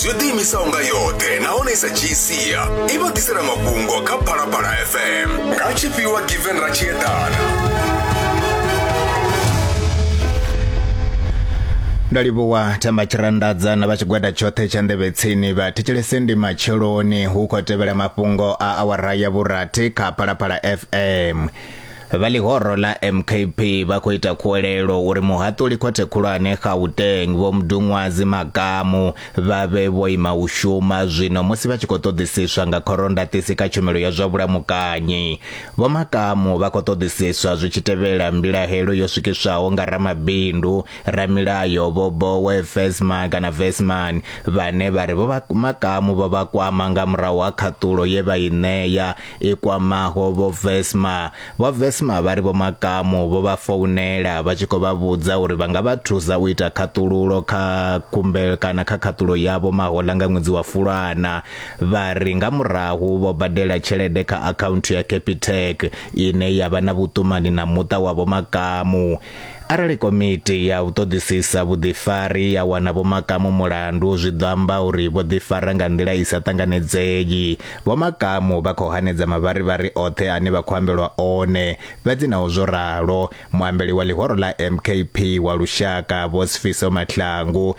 yo ḓiimisaho nga yoṱhe nahone i sa dzhii sia i vha ḓisela mafhungo kha phalaphala fm nga tshifhiwa given ra tshi eḓana nda livhuwa themba tshiranḓadza na vha tshigwada tshoṱhe tsha nḓevhe tsini vha thetshelese ndi matsheloni hu khou tevhela mafhungo a awara ya vhurathi kha phalaphala fm Vha ḽihoro ḽa MKP vha khou ita khuwelelo uri muhaṱuli khothe khulwane Gauteng Vho Mduṅwazi Makamu vha vhe vho ima u shuma zwino musi vha tshi khou ṱoḓisiswa nga khorondaṱisi kha tshumelo ya zwa vhulamukanyi. Vho Makamu vha khou ṱoḓisiswa zwi tshi tevhela mbilahelo yo swikiswaho nga ramabindu, ramilayo Vho Boe Vesma kana Vesman vhane vha ri Vho Makamu vho vha kwama nga murahu ha khaṱulo ye vha i ṋea i kwamaho vho vesma vho vesma vha ri vho makamu vho vha founela vha tshi khou vha vhudza uri vha nga vha thusa u ita khaṱululo kha khumbelo kana kha khaṱulo yavho mahola nga ṅwedzi wa fulwana vha ri nga murahu vho badela tshelede kha akhaunthu ya capitec ine ya vha na vhuṱumani na muṱa wa vho makamu Arali komiti ya u ṱoḓisisa vhuḓifari ya wana Vho Makamu mulandu, zwi ḓo amba uri vho ḓifara nga nḓila i sa ṱanganedzei. Vho Makamu vha khou hanedza mavharivhari oṱhe ane vha khou ambelwa one. Fhedzi naho zwo ralo, muambeli wa ḽihoro ḽa MKP wa lushaka, Vho Sifiso Mahlangu,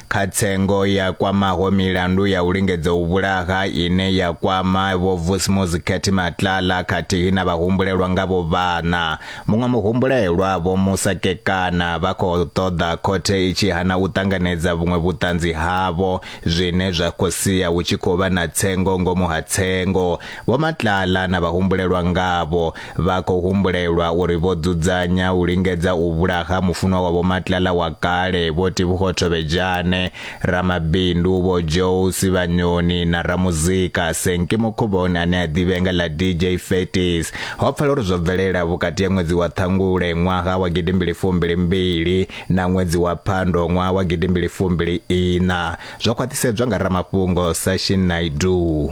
kha tsengo ya kwamaho milandu ya u lingedza u vhulaha ine ya kwama vho Vusmuzi Khethi Matlala khathihi na vhahumbulelwa nga vho vhana. Muṅwe muhumbulelwa vho Musa Kekana vha khou ṱoḓa khothe i tshi hana u ṱanganedza vhuṅwe vhuṱanzi havho zwine zwa khou sia hu tshi khou vha na tsengo ngomu ha tsengo. Vho Matlala na vhahumbulelwa ngavho Vha khou humbulelwa uri vho dzudzanya u lingedza u vhulaha mufunwa wa Vho Matlala wa kale, Vho Tevhugo Thovhejane, ramabindu Vho Joe Sivhanyoni na ramuzika Senki Mukhuvhoni ane a ḓivhea nga ḽa DJ Faties. Ho pfala uri zwo bvelela vhukati ha ṅwedzi wa Ṱhangule ṅwaha wa gidimbili fumbili mbili na ṅwedzi wa Phando ṅwaha wa gidimbili fumbili iṋa, zwo khwaṱhisedzwa nga ramafhungo Sashin Naidoo.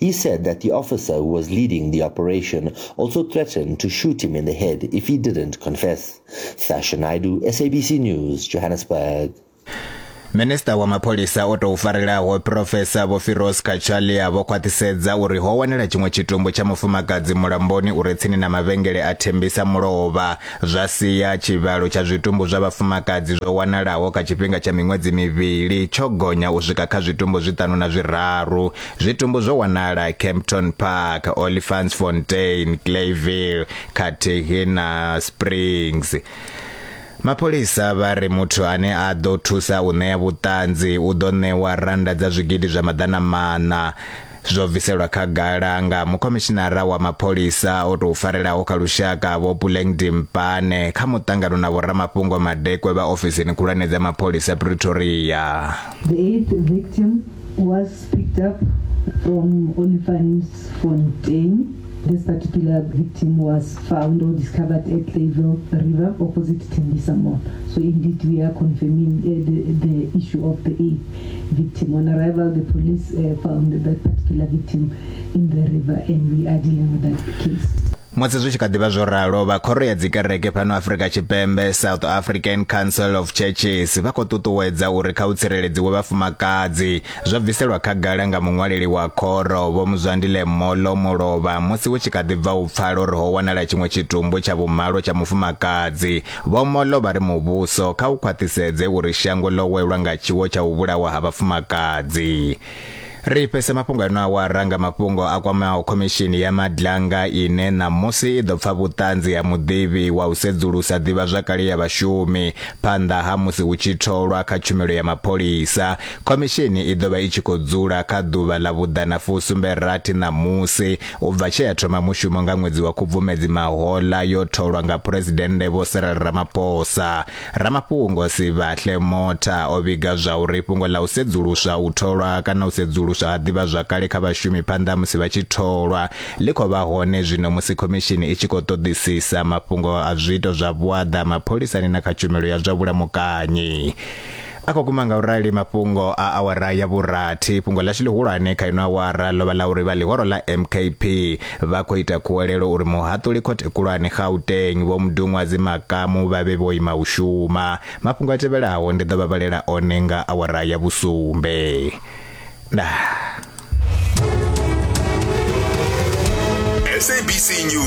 He said that the officer who was leading the operation also threatened to shoot him in the head if he didn't confess. Sasha Naidu, SABC News, Johannesburg. minista wa mapholisa o tou farelaho profesa vho firos kachalia vho khwaṱhisedza uri ho wanala tshiṅwe tshitumbu tsha mufumakadzi mulamboni uri tsini na mavhengele a thembisa mulovha zwa sia tshivhalo tsha zwitumbu zwa vhafumakadzi zwo wanalaho kha tshifhinga tsha miṅwedzi mivhili tsho gonya u swika kha zwitumbu zwiṱanu na zwiraru. Zwitumbu zwo wanala Kempton Park, Olifantsfontein, Clayville khathihi na Springs. Mapholisa vha ri muthu ane a ḓo thusa u ṋea vhuṱanzi u ḓo ṋewa rannda dza zwigidi zwa maḓana maṋa. zwo bviselwa khagala nga mukhomishinara wa mapholisa o tou farelaho kha lushaka vho puleng dimpane kha muṱangano na vhoramafhungo madekwe vha ofisini khulwane dza mapholisa pretoria The eighth victim was picked up from Olifantsfontein. This particular victim was found or discovered at Clayville River opposite Tembisa Mall. So indeed, we are confirming uh, the, the issue of the eighth. victim, on arrival the police uh, found that particular victim in the river and we are dealing with that case. musi zwi tshi kha ḓivha zwo ralo vha khoro ya dzikereke fhano afrika tshipembe south african council of churches vha khou ṱuṱuwedza uri kha u tsireledziwe vhafumakadzi zwo bviselwa khagala nga muṅwaleli wa khoro vho muzwandile molo mulovha musi hu tshi kha ḓi bva u pfala uri ho wanala tshiṅwe tshitumbu tsha vhumalo tsha mufumakadzi Vho Mollo vha ri muvhuso kha u khwaṱhisedze uri shango ḽo welwa nga tshiwo tsha u vhulawa ha vhafumakadzi. Ri fhese mafhungo ano awara nga mafhungo a kwamaho khomishini ya Madlanga ine ṋamusi i ḓo pfa vhuṱanzi ha muḓivhi wa u sedzulusa ḓivhazwakale ya vhashumi phanḓa ha musi hu tshi tholwa kha tshumelo ya mapholisa. Khomishini i ḓo vha i tshi khou dzula kha ḓuvha ḽa vhuḓana fusumbe rathi ṋamusi U bva tshe ya thoma mushumo nga ṅwedzi wa Khubvumedzi mahoḽa yo tholwa nga Phuresidennde Vho Cyril Ramaphosa. Ramafhungo Sibahle Motha o vhiga zwa uri fhungo ḽa u sedzuluswa u tholwa kana u sedzuluswa ha ḓivhazwakale kha vhashumi phanḓa musi vha tshi tholwa ḽi khou vha hone zwino musi khomishini i tshi khou ṱoḓisisa mafhungo a zwiito zwa vhuaḓa mapholisani na kha tshumelo ya zwa vhulamukanyi. a khou guma nga u rali mafhungo a awara ya vhurathi fhungo ḽashu ḽihulwane kha ino awara ḽo vha ḽa uri vha ḽihoro ḽa mkp vha khou ita khuwelelo uri muhaṱuli khothe khulwane gauteng vho mudunwadzi makamu vha vhe vho ima u shuma mafhungo a tevhelaho ndi ḓo vha vhalela one nga awara ya vhusumbe ndaa